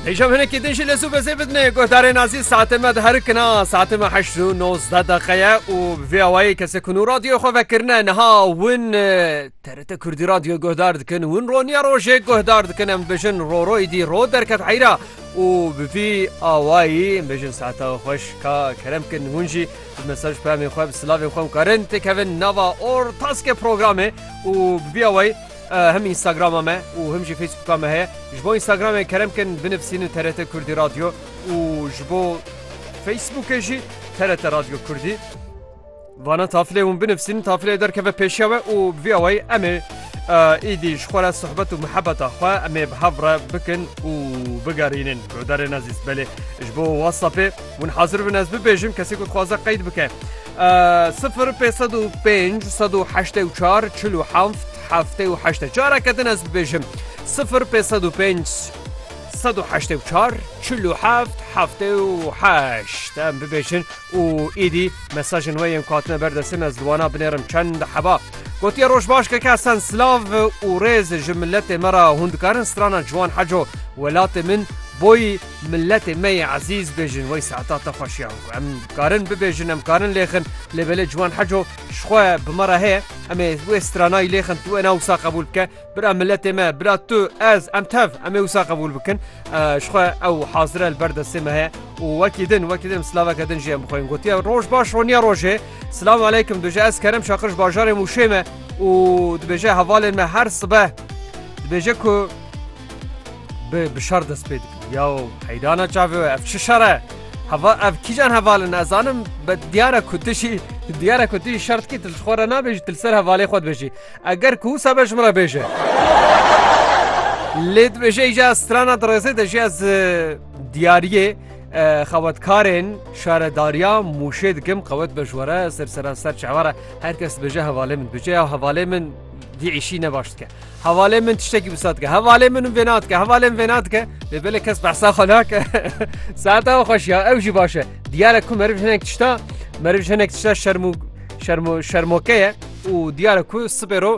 Hêşam hinekî din jî li zû bezê bidinê guhdarê nazî saetê me diherikina saetê me heşt û nozdeh deqeye û vê awayê kesê ku nû radyoyê xwe vekirine niha win TRT Kurdî radyo guhdar dikin win roniya rojê guhdar dikin em bijin roro îdî ro derket heyra û bi vî awayî em bijin saeta xweş ka kerem kin hûn jî mesaj pemê xwe bi silavên xwe karin têkevin nava or taskê programê û bi vî awayî Him Instagrama me û him jî Facebooka me heye. Ji bo Instagramê kerem kin binivîsînin TRT Kurdî Radyo û ji bo Facebookê jî TRT Radyo Kurdî. Vana tafilê hûn binivîsînin tafilê derkeve pêşiya we û bi vî awayî em ê êdî ji xwe re sohbet û mihebeta xwe em ê bi hev re bikin û bigerînin. Guhdarên ezîz belê ji bo Whatsappê hûn hazir bin ez bibêjim kesê ku dixwaze qeyd bike. Sifir pê sed û pênc sed û heştê û çar çil û heft heftê û heştê careke din ez bibêjim sifir pê sed û pênc sed û heştê û çar çil û heft heftê û heşt em bibêjin û êdî mesajên wê yên ku hatine ber destê me ez li wana binêrim çend heba gotiye roj baş keke esen silav û rêz ji miletê me re hûn dikarin strana ciwan heco welatê min boyî Miletê me yê ezîz bêjin wey saeta te xweş ya ku em karin bibêjin em karin lêxin lê belê Ciwan Heco ji xwe bi me re heye em ê wê stranayî lêxin tu wêna wisa qebûl bike bira miletê me bira tu ez em tev em ê wisa qebûl bikin ji xwe ew hazire li ber destê me heye û wekî din wekî din silaveke din jê em bixwên gotiye roj baş roniya rojê silav aleykum duje ez kerem şaqir ji bajarê mûşê me û dibêje hevalên me her sibe dibêje ku Bi bi şer dest pê dikin. Yaw heydana çavê we ev çi şer e? Heva ev kîjan heval in ez zanim be diyar e ku tu jî diyar e ku tu jî şer dikî tu li xwe re nabêjî tu li ser hevalê xwe dibêjî. Eger ku wisa be ji min re bêje. Lê dibêje îja strana dirêzê de jî ez diyariyê xewetkarên şaredariya mûşê dikim qewet be ji we re ser seran ser çawa re her kes dibêje hevalê min dibêje ya hevalê min dî îşî ne baş dike. Hevalê min tiştekî wisa dike. Hevalê min û vêna dike. Hevalê min vêna dike. Lê belê kes behsa xwe nake. Saeta xwe xweş ya. Ew jî baş e. Diyar e ku meriv hinek tişta meriv hinek tişta şerm û şerm û şermoke ye û diyar e ku sibê ro